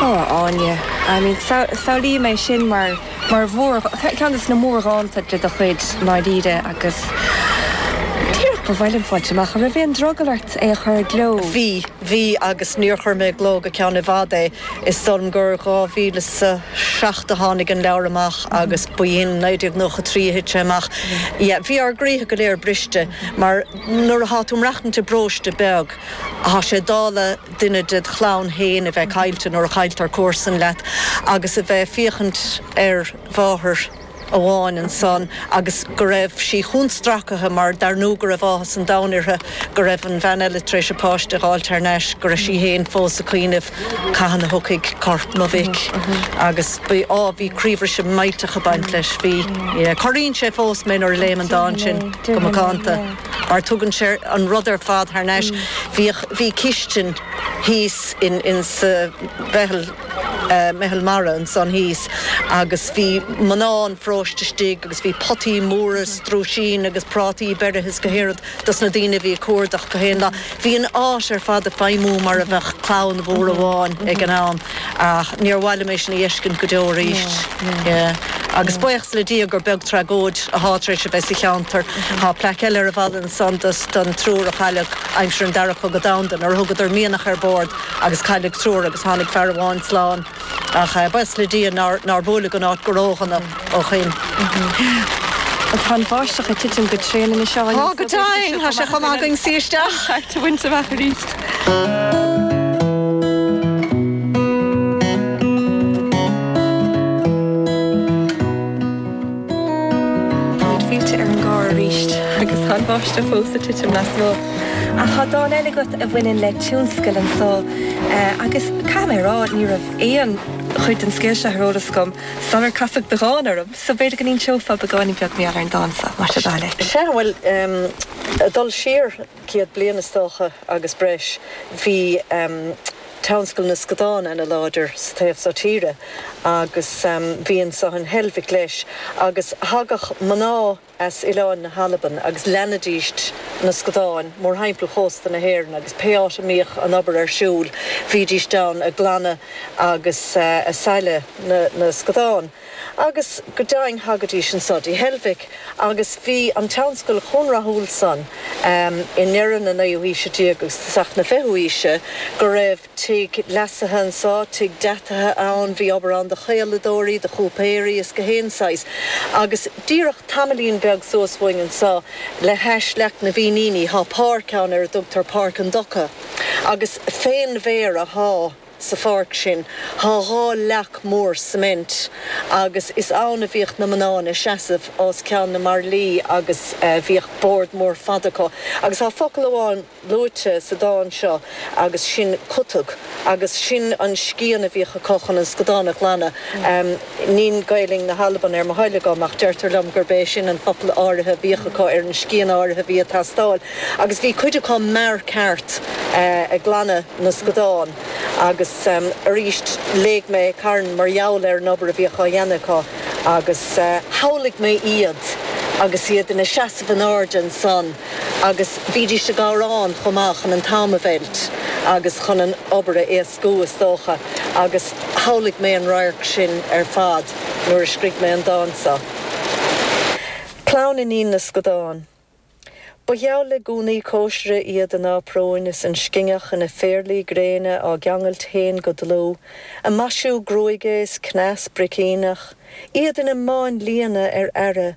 Ó, a Áine, I mean, samhlaím é sin mar, mar mhór, ceann des na mórdhánta de do chuid, ndáiríre, agus díreach ba mhaith liom fáilt amach an raibh aon drogall ort é a chur i gcló? Bhí, bhí, agus níor chuir mé i gcló go ceann i bhfad é, is dóigh liom gur 2007 a tháinig an leabhar amach agus ba in 1993 a thit sé amach. Yeah, bhí ár gcroíthe go léir briste mar nuair athá tú ag maireachtaint i bparóiste beag, Tá sé dála duine ded chlann fhéin a bheith caillte nuair a chailltear comharsan leat agus a bheith ag féachaint ar mháthair amháin ansan agus go raibh sí chomh stracaithe mar dar ndú go raibh áthas an domhain uirthe go raibh an bhean eile tar éis a páiste a dh'fháilt thar n-ais, go raibh sí fhéin fós ag cuimhneamh cathain a thiocfaidh corp mo mhic agus bhí, á, bhí croíbhriseadh millteach ag baint leis, bhí. Corraíonn sé fós mé nuair a léim an dán sin go macánta. mar tugann sé an rud ar fad thar n-ais. Bhíodh, bhí cistin thíos in, in sa mheitheal, meitheal mara ansan thíos agus bhí mná an pharóiste istigh agus bhí potaí móra strúisín agus prátaí beirithe is gach aon rud dos na daoine a bhí ag cuardach gach aon lá. Bhí an áit ar fad ag feidhmiú mar a bheadh clann mhór amháin ag an am. Ach níor mhaith liom é sin a fheiscint go deo arís. Agus buíochas le Dia gur beag tragóid athá tar éis a bheith sa cheantar. Tá plaic eile ar an bhfalla ansan don triúr a chailleadh aimsir an Dara Cogadh Domhanda nuair a thugadar mianach ar bord agus cailleadh triúr agus tháinig fear amháin slán. Ach buíochas le Dia nár buaileadh an áit go ródhona. ó shin. Tá an bháisteach ag titim go tréan anois. Tá go deimhin! Tá sé chomh maith againn suí isteach. Carr a bhaint amach aríst. Táimid fillte ar an gcarr aríst agus tá an bháisteach fós ag titim lasmuigh. Ach tá dán eile agat a bhaineann le tionscal anso agus caithfidh mé a rá, ní raibh aon chuid den scéal seo ar eolas agam. Sular casadh do dhán orm so, b'fhéidir go n-inseofá beagáinín beag mar gheall ar an dán so, más é do thoil é. Sea, bhuel, em, ag dul siar céad bliain is dócha agus breis, bhí, em, tionscal na scadán ana láidir sa taobh so tíre agus, em, bhí anso in Heilbhic leis agus thagadh mná, as oileáin na hAlban agus leanaidíst na scadáin mórthimpeall chósta na hÉireann agus pé áit a mbíodh an obair ar siúl bhídíst ann a' glanadh agus a' sailleadh na na scadán agus go deimhin thagaidís anso dtí Heilbhic agus bhí an tionscal chomh rathúil san i ndeireadh na naoú haoise déag agus isteach na fichiú aoise go raibh Tigh leasaithe anso, tigh deataithe ann, bhí obair ann do chaoladóirí, do chúipéirí is go haon saghas. Agus díreach tamaillín beag suas uainn anso, le hais leac na bhFíníní, thá páirc ann ar a dtugtar Páirc an Dumhcha. Agus fén bhféar athá sa pháirc sin, thá dhá leac mhór cement, agus is ann a bhíodh na mná ina seasamh os ceann na mbairillí agus bhíodh bord mór fada acu. Agus thá focal amháin. luaite sa dán seo agus sin cutag agus sin an scian a bhíodh acu chun an scadán a ghlanadh. Nín Gaelainn na hAlban ar mo thoil agam ach deirtear liom gurb é sin an focal áirithe a bhíodh acu ar an scian áirithe a bhí ag teastáil agus bhí cuid acu mear ceart ag glanadh na scadán agus arís léigh mé carn mar gheall ar an obair a bhíodh á dhéanamh acu agus shamhlaigh mé iad agus iad ina seasamh in airde ansan. Agus bhídís ag amhrán chomh maith chun an t-am a mheilt agus chun an obair a éascú, is dócha, agus shamhlaigh mé an radharc sin ar fad nuair a scrígh mé an dán seo. Clann Iníon na Scadán. Ba gheall le gúnaí cóisire iad a n-aprúin is an scinneach ina phéarlaí gréine á gceangailt féin go dlúth, ag maisiú gruaige is cneas bricíneach, iad ina máinlianna ar aire,